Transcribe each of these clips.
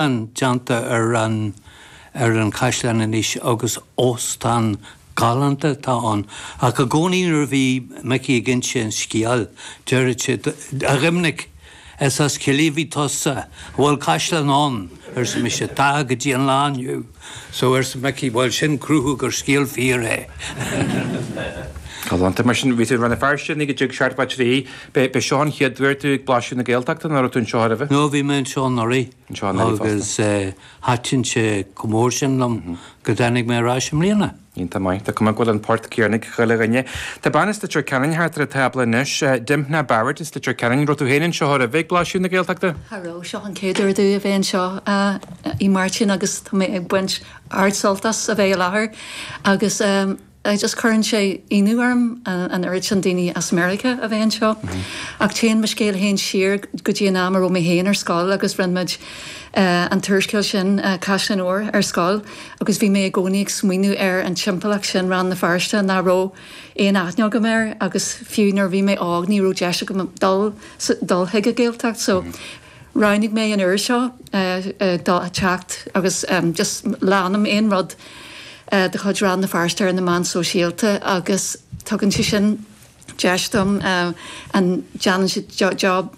an déanta ar an an caisleán anois agus óstán galánta atá ann. Ach i gcónaí nuair a bhí Micí ag inse an scéil deireadh sé, A Dhoimnic, is as Cill Mhantáin tusa. An bhfuil caisleán ann? arsa mise, Tá, go dtí an lá inniu. So, arsa Micí, bhuel sin cruthú gur scéal fíor é. Galánta, mar sin, bhí tú in Rann na Feirste, a Mhicí i dtigh Seart Mhac Rí. B'é seo an chéad uair duit ag Blaisiú na Gaeltachta nó raibh tú anseo aroimhe? No, bhí mé anseo anuraidh. Anseo anuraidh fosta. Agus thaitin sé chomh mór sin liom go dtáinig mé ar ais i mbliana. Iontach maith, tá cuma go bhfuil an port céanna ag chuile dhuine. Tá bean as Leitir Ceanainn thart ar an tábla anois, Dymphna Barrett as Leitir Ceanainn. Raibh tú fhéin anseo aroimhe ag Blaisiú na Gaeltachta? Cha raibh, seo an chéad uair domh a bheith anseo a Mháirtín agus tá mé ag baint ard-sult as a bheith i láthair agus just cuireann sé ionadh orm an oiread sin daoine as Meiriceá a bheith anseo ach téann mo scéal fhéin siar go dtí an am a raibh mé fhéin ar scoil agus rinne muid an t-úrscéal sin Caisleáin Óir ar scoil. agus bhí mé i gcónaí ag smaoineamh ar an timpeallacht sin, Rann na Feirste, nach raibh aon aithne agam air agus fiú nuair a bhí mé óg ní raibh deis agam dul, dul chuig an Ghaeltacht so roghnaigh mé an uair seo le theacht agus just leanaim aon rud de chuid Rann na Feirste ar na meáin shóisialta agus tugann sé sin, deis dom agus déanann siad job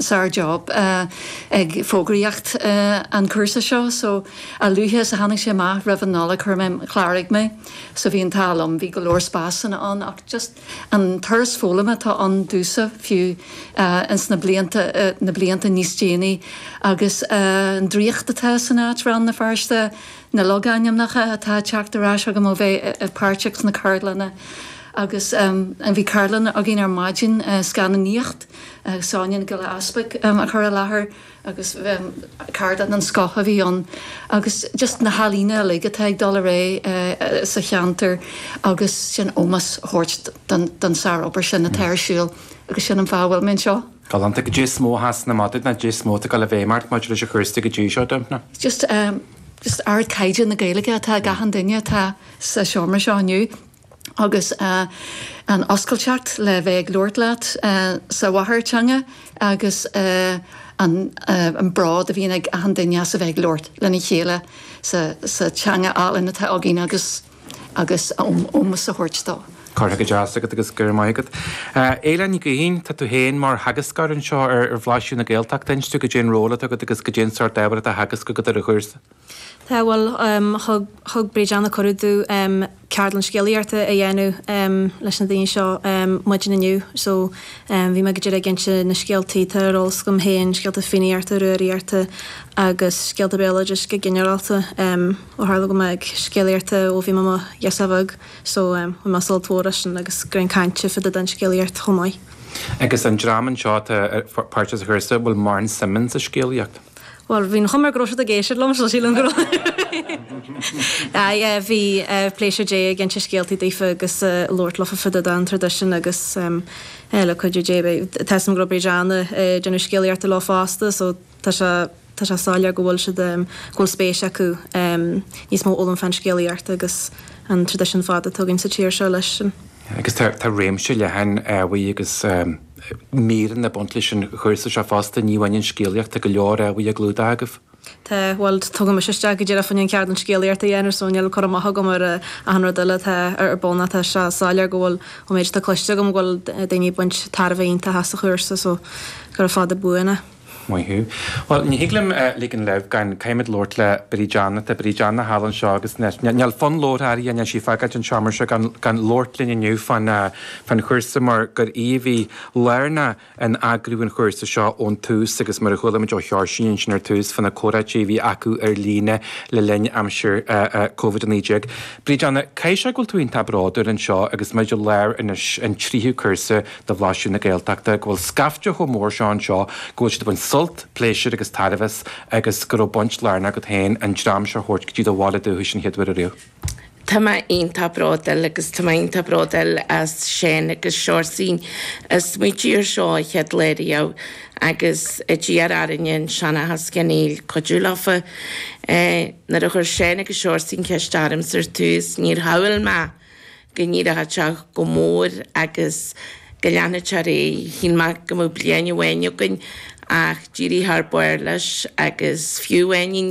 sár job ag fógraíocht an cúrsa seo so a luaithe is a tháinig sé amach roimh an Nollaig chuir mé chláraigh mé so bhí an t-ádh liom bhí go leor spásanna ann ach just an turas foghlama atá ann domhsa fiú ins na blianta na blianta níos déanaí agus an draíocht atá san áit Rann na Feirste na logainmneacha atá ag teacht ar ais agam ó bheith páirteach sna ceardlanna Agus bhí ceardlann againn ar maidin, scannánaíocht, Sonia Nic Giolla Easbuic a chuir i láthair agus ceardlann den scoth a bhí ann. Agus just na healaíona uilig atá ag dul ar aghaidh sa cheantar agus sin ómós a thabhairt don sár-obair sin atá ar siúl agus sin an fáth a bhfuil mé anseo. Galánta caidé is mó a sheasann amach duit nó caidé is mó atá ag dul i bhfeidhm ort maidir leis an chúrsa go dtí seo, Dymphna. Just ard-chaighdeán na Gaeilge atá ag achan duine atá sa seomra seo inniu. agus an oscailteacht le bheith ag labhairt leat sa mháthairtheanga agus an bród a bhíonn ag achan duine as a bheith ag labhairt lena chéile sa teanga álainn atá againn agus agus ómós a thabhairt dó. Curtha go deas agat agus go raibh maith agat. Aoileann Ní Ghaoithín, tá tú féin mar theagascóir anseo ar Bhlaisiú na Gaeltachta, inis domh, cad é an ról atá agat agus cad é an sórt ábhar atá á theagasc agat ar an chúrsa? Tá, bhuel, thug Bríd Anna cuireadh domh ceardlann scéalaíochta a dhéanamh leis na daoine seo maidin inniu, so bhí mé go díreach ag inse na scéaltaí atá ar eolas agam féin scéalta Fiannaíochta, Rúraíochta agus scéalta béaloidis go ginearálta, ó tharla go raibh mé ag scéalaíocht ó bhí mé i mo ghasúr bheag, so bhí mé ag sult mór freisin agus ag caint fá dtaobh den scéalaíocht chomh maith. Agus an dream anseo atá ag glacadh páirt sa chúrsa, bhfuil mórán suim acu sa scéalaíocht? Bhuel, bhí an chuma air go raibh siad ag éisteacht liom, so sílim go raibh. Aye, eh, bhí, eh, pléisiúr a bheith ag inse scéaltaí daofa agus, eh, ag labhairt leofa fá dtaobh den traidisiún agus, em, eh, le cuidiú Dé, bhí, tá 'fhios a'm go raibh Bríd Anna, eh, ag déanamh scéalaíochta leo fosta so tá sé, tá sé soiléir go bhfuil siad, em, go bhfuil spéis acu, em, níos mó a fhoghlaim fán scéalaíocht agus an traidisiún fada atá againn sa tír seo leis. Agus tá, tá réimse leathan, eh, ábhair agus, em, míreanna ag baint leis an gcúrsa seo fosta, ní amháin an scéalaíocht, tá go leor ábhair á gclúdach agaibh. Tá, bhuel, tugadh mise isteach go díreach fá choinne ceardlann scéalaíochta a dhéanamh, so níl cur amach agam ar achan rud eile atá ar bun ach tá sé soiléir go bhfuil, ón méid atá cluinste agam, go bhfuil daoine ag baint tairbhe iontach as an chúrsa, so gura fada buan é. Maith thú. Bhuel, ní thig liom ligean leibh gan caithfimid labhairt le Bríd Anna tá Bríd Anna thall anseo agus níl fonn labhartha uirthi níl sí ag fágáilt an seomra seo gan labhairt linn inniu fán chúrsa mar gur í a bhí lárnach in eagrú an chúrsa seo ón tús agus mar a chuala muid ó Sheoirsín ansin ar tús fá na comhráití a bhí acu ar líne le linn aimsir Covid 19. Bríd Anna caithfidh sé go bhfuil tú iontach bródúil anseo agus muid i lár anois an tríú cúrsa de Bhlaiseadh na Gaeltachta, go bhfuil scaifte chomh mór seo anseo go bhfuil siad ag baint sult, pléisiúr agus tairbhe as agus go raibh baint lárnach agat féin an dream seo a thabhairt go dtí do bhaile dúchais an chéad lá ariamh. Tá mé iontach bróduil agus tá mé iontach bróduil as Séin agus Seoirsín a smaoitigh ar seo an chéad lá riamh agus a d'iarr orainne i Seanchas Chonaill cuidiú leofa. Nuair a chuir Séin agus Seoirsín ceist orm ar tús níor shamhlaigh mé go n-éireodh sé chomh mór agus go leanfadh sé ar aghaidh. Shíl mé go mbeadh bliain amháin againn ach d'éirigh thar barr leis agus fiú